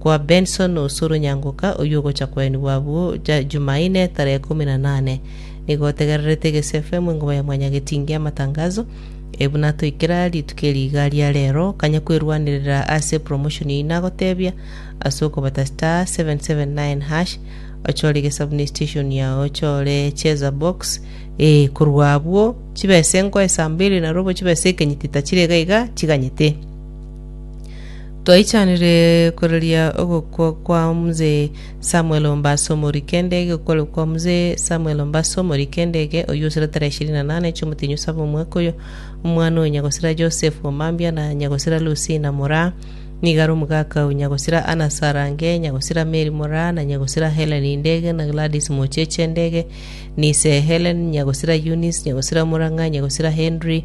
kwa Benson Osoro Nyangoka oyio ogocha kwaenigwa abwo ja Jumaine tarehe ikomi na nane. Nigo otegererete Gesi FM engoba ya Mwanyagetinge y'amatangazo, ee buna toikera rituko eri iga ria rero, kanya kwerwanerera ase promotion eyio nagotebia ase okobata *779#, ochore gesabu ne station yao ochore cheza box, ee korwa abwo chibesa enko esambili narobo chibesa ekenyiti tachire iga iga chiganyete. Twaichanire koreria ogokwa kwa mzee Samuel Ombaso omori kendege okore kwa mzee Samuel Ombaso omori kendege oyio osire tarehe ishirini na nane chiomotenyo saba omwaka oyo omwana oyo nyagosira Joseph Omambia na nyagosira Lucina moraa nigo are omogaka o nyagosira Anna Sarange nyagosira Mary moraa na nyagosira Helen Ndege na Gladys Mocheche Ndege nise Helen nyagosira Eunice nyagosira Murang'a nyagosira Henry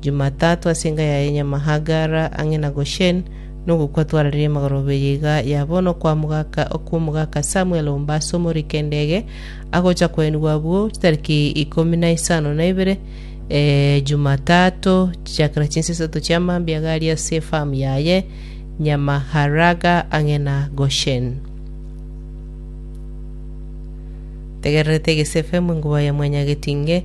Jumatatu ase enka yaye Nyamahagara ang'e na Gosheni, na ogokwa twarareire magoro abere iga ya bono kw'omogaka okw'omogaka Samuel omba ase omorike endege, agocha koenigwa abwo chitariki ikomi na isano na ibere, eh, Jumatatu, chichakera chinsa isato chia mambia iga aria ase efamu yaye Nyamaharaga ang'e na Gosheni. Tegererete egesefe mwengubao ya mwanyagetinge,